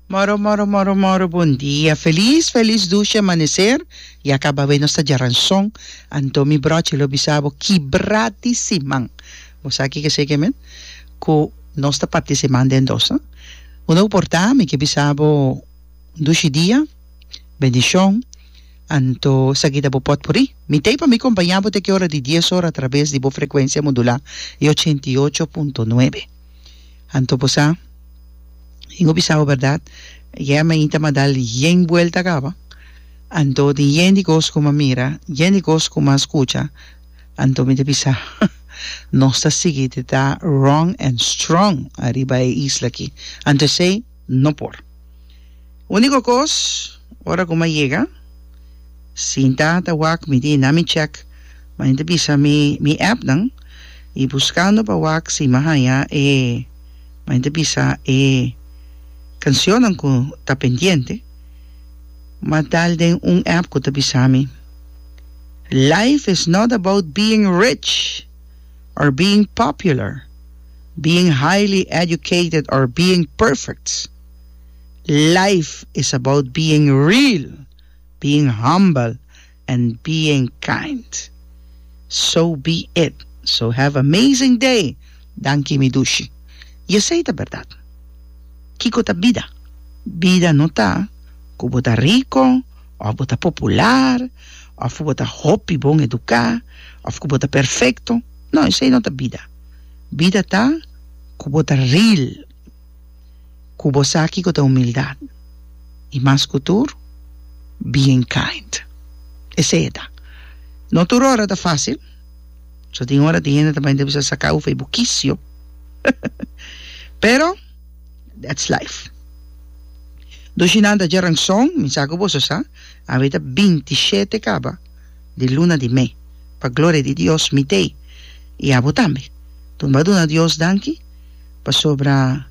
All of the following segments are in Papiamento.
Moro moro moro moro bon dia felis felis dushi amanecer ya caba awey nos ta djaran son anto mi brochi lo bisa bo kibra di siman bo sa kico se ke men cu nos ta parti siman den dos no cu no porta mi ke bisa bo dushi dia bendicion anto esa kida bo pot puri mi tey pa mi compaña bo te ki ora di dies ora a traves di bo frecuencia modula y ochenta y ocho punto nuebe. Anto bo sa, Ingo bisa bo berdad, Yeh mi ainda m'a dal yen buelta caba, anto tin yen di cos cu m'a mira, yen di cos cu m'a scucha, anto mi ta bisa, Nos ta sigui di ta wrong and strong ariba e isla aki, anto esey, No por. Unico cos, ora cu m'a yega, sinta ta wak, mi tin na mi check, m'a yenta bisa mi mi appnan y buscando pa wak si m'a haya e, m'a yenta bisa e cancionnan cu ta pendiente, m'a dal den un app cu ta bisa mi, Life is not about being rich! or being popular, being highly educated or being perfect. Life is about being real, being humble and being kind. So be it, so have amazing day danki mi dushi. Y esey ta berdad. Kiko ta bida? Bida no ta cu bo ta rico, òf bo ta popular, òf ku bo ta hopi bon eduká, òf ku bo ta perfekto. No, esei no ta bida. Bida ta ku bo ta ril, ku bo sa kiko ta humildat, i mas ku tur, being kind. Esei e ta. No tur ora ta fásil, pasobra tin ora tin hende ta bai ta bisa saká ufai bo kisio, pero. That's life. Dushi nan ta dje ranson, mi sa ku boso sa, awe ta binti shete kaba di luna di me. Pa gloria di Dios mit'ei i abo tambe. Tumba duna Dios danki pasobra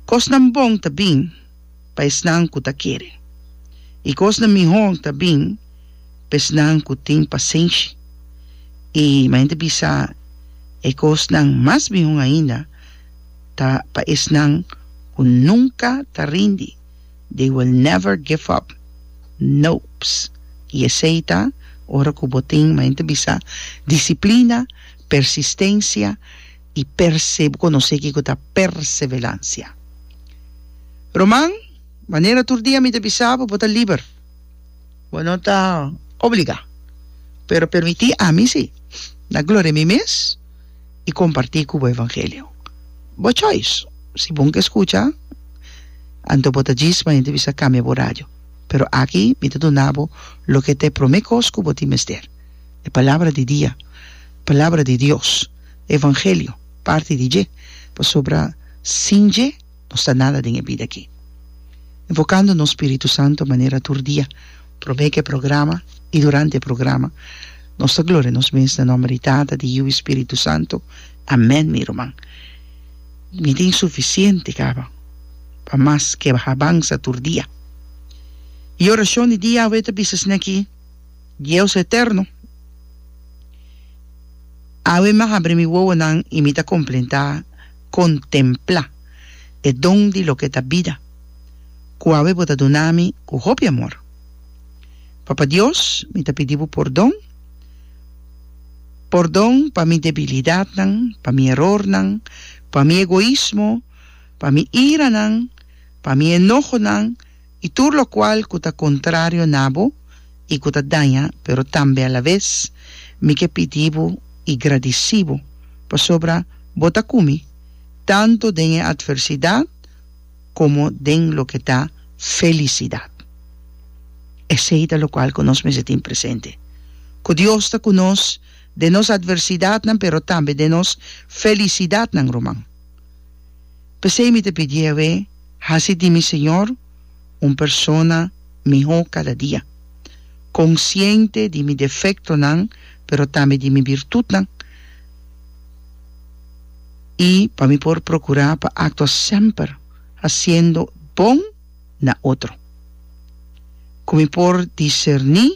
kosnan bon ta bin pa esnan ku ta kere, i kosnan mihó ta bin pa esnan ku tin pasenshi. I mi a henter bisa e kosnan mas mihó ainda. ta pa esnan cu nunca ta rindi, they will never give up, nopes, y esey ta ora cu bo tin, como hende bisa, disciplina, persistencia y perse, bo conoce kico ta perseverancia. Roman, Manera tur dia mi ta bisa bo, bo ta liber, bo no ta obliga, pero permiti ami si, na gloria mi mes, i kompartí ku bo evangelio. Bo chois, si bon ke skucha, anto bo ta djis ma hende bisa kambia bo radio. Pero aki mi ta duna bo loke ta e promé kos ku bo tin mester, e Palabra di Dia, Palabra di Dios, evangelio, parti di dje, pasobra sin dje, nos ta nada den e bida akí. Invokando nos Spiritu Santo manera tur dia, promé ku e programa i durante e programa, nos ta gloria nos mes na nòmber di Tata, di Yiu i Spiritu Santo. Amèn, mi ruman. Mi tin sufisiente kaba pa mas keba habansa tur dia. E orashon di dia awe ta bisa esei akí, Dieus eterno, awe mi a habri mi wowonan i mi ta komplentá, contemplá e don di loke ta bida, cu awe bo ta duna mi cu hopi amor. Papa Dios, mi ta pidi bo pordon, pordon pa mi debilidadnan, pa mi erornan, pa mi egoismo, pa mi iranan, pa mi enohonan, I tur lokual ku ta kontrario na bo i ku ta daña, pero tambe alabes, mi ke pidi bo i gradisí bo, pasobra bo ta ku mi tantu den e atversidat komo den loke ta felisidat. Esei ta lokual ku nos mester tin presente, ku Dios ta ku nos den nos atversidatnan, pero tambe den nos felisidatnan, ruman. P'esei mi ta pidi Yahweh, Hasi di mi, Señor, un persona mihó kada dia, konsiente di mi defektonan pero tambe di mi birtutnan, i pa mi por prokurá pa aktua semper hasiendo bon na otro. Ku mi por diserní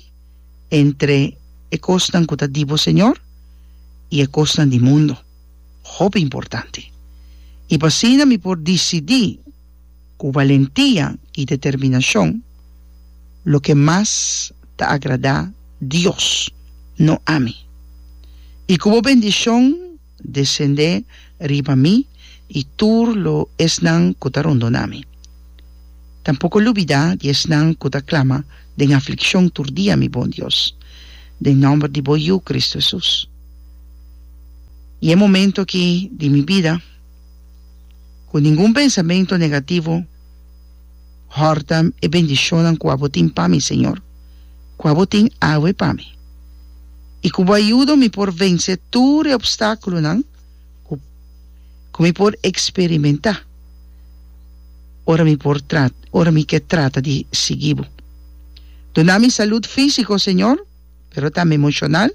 entre e kosnan ku ta di bo, Señor, i e kosnan di mundo. hopi importante. I pa asina mi por disidí ku valentia i determinashon loke mas ta agradá Dios, no ami. I ku bo bendishon desendé riba mi i tur lo esnan ku ta rondoná mi. Tampoko lubidá di esnan ku ta klama den aflikshon tur dia, mi bon Dios, den nòmber di bo Yu, Kristu Hesus. I e momento aki di mi bida ku ningun pensamentu negativo hòrta e bendishonnan ku abo tin pa mi, Señor, ku abo tin awe pa mi, i ku bo a yuda mi por vensé tur e opstákulonan ku ku mi por eksperimentá ora mi por ora mi ke trata di sigui bo. Duna mi salud físiko, Señor. pero ta mi emoshonal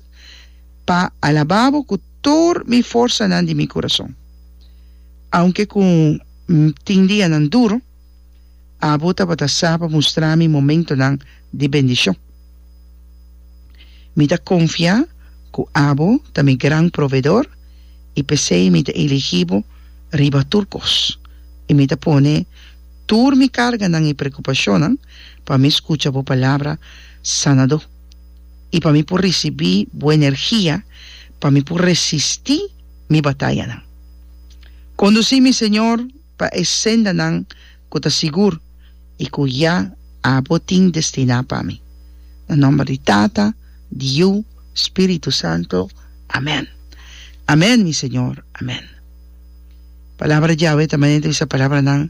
pa alabá bo ku tur mi forsanan di mi kurason. Aunke ku N tin dianan duru, abo tabata sa pa mustrá mi momentunan di bendishon. Mi ta konfiá ku abo ta mi Gran Provedor i p'esei mi ta eligí bo riba tur kos, i mi ta pone tur mi karganan i preokupashonnan pa mi skucha bo palabra, sanadó, i pa mi por risibí bo energia pa mi por resistí mi batayanan. Kondusí mi, Señor, pa e sendanan ku ta sigur i ku ya Abo tin destiná pa mi. Na nòmber di Tata, di Yu, Spiritu Santu. Amèn. Amèn, mi Señor. Amèn. Palabra Yahweh ta manera di bisa palabranan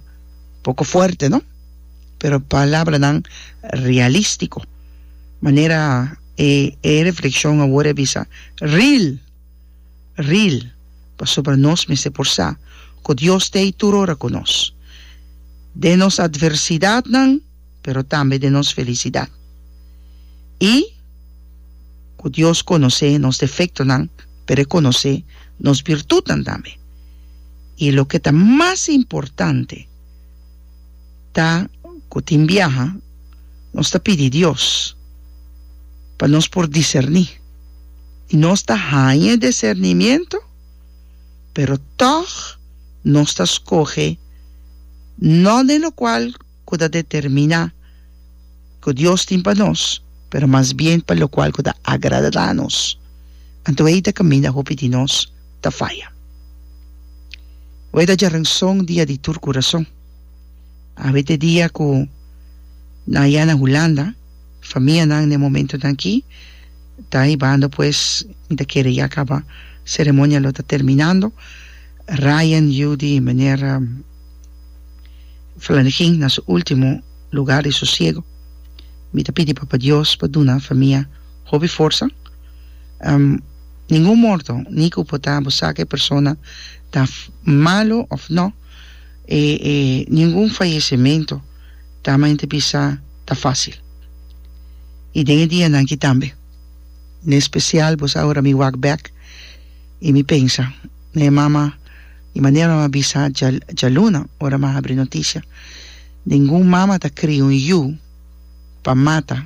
poko fuerte, no? Pero palabranan realístiko, manera e e reflekshon awor a bisa, ril! ril! pasobra nos mester por sa ku Dios ta ei tur ora ku nos, den nos atversidatnan pero tambe den nos felisidat, i ku Dios konosé nos defektonan pero e konosé nos birtutnan tambe, i loke ta mas importante, ta cu tin biaha nos ta pidi Dios pa nos por diserni y nos ta haña discernimiento pero tog nos ta scoge no den locual cu ta determina ku Dios tin pa nos, pero mas bien pa lokual ku ta agradá nos. Anto ei ta kaminda hopi di nos ta faya. Awor ta djarenson dia di tur kurason. Awe t'e dia ku nan ya na Hulanda, famianan n'e momentunan akí ta hibando pues mi ta kere ya kaba, seremonia lo ta terminando, Ryan, Judy i meneer Flanigin na su último lugar di sosiego. Mi ta pidi Papa Dios pa duna famia hopi forsa. Ningun morto, ni ku por ta bo saka e persona ta malo òf nò, e e ningun fayesementu ta mi ta bisa ta fásil. I den e dianan aki tambe, en espesial bo sa ora mi wak bèk i mi pensa na e mama, di manera mi a bisa djaluna ora mi a habri notisia. Ningun mama ta kria un yu pa mata,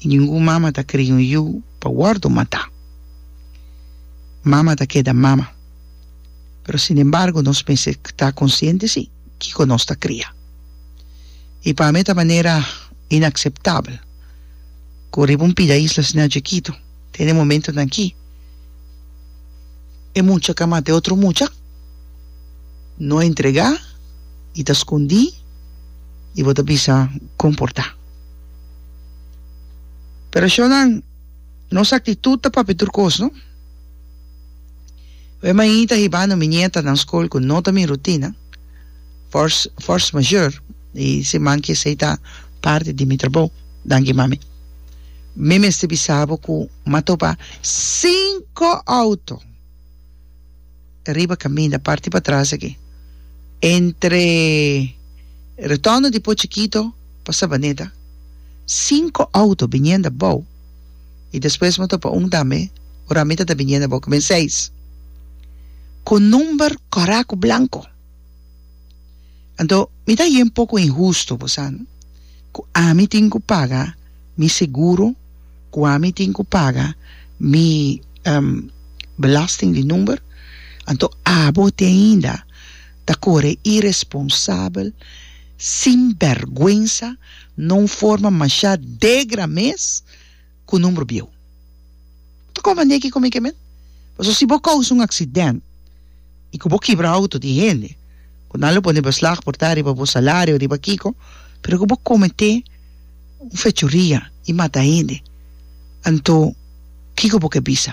ni ningun mama ta kria un yu pa wòrdu matá. Mama ta keda mama. Pero sin embargo nos mester ta konsiente si kiko nos ta kria. I pa mi ta manera inakseptabel ku riba un pida isla asina chikitu, Den e momentonan akí, e mucha ka mata e otro mucha, no a entregá i ta skundí i bo ta bisa kon por ta. Pero shornan nos aktitut ta papia tur kos, no? Wen mainta ta hibando mi nietanan skol ku no ta mi rutina, fors, fors mayor, i siman ki esei ta parti di mi trabou. Danki, mami. Mi mester bisa bo cu matoba cinco auto riba caminda, parti patras aki, entre Rotonda di Pochi Kito pa Sabaneta. Cinco auto biniendo abao. Y despues mi topa un tambe ora mi tata biniendo abao, cu bin seis. Cu number coraco blanco. Anto, mi ta yin poco inhusto, bo sa no? Cu ami tin cu paga mi seguro, cu ami tin cu paga mi belasting di number, anto abo te ainda ta core irresponsabel, sinbergwensa, no un forma masha degra mes? ku number bieu. Bo ta konfondé ki ku mi ke men? Pasobra si bo kousa un aksident i ku bo kibra outo di hende ku nan lo pone beslag por ta riba bo salario, riba kiko, pero ku bo kometé un fechuria i mata hende, anto kiko bo ke bisa?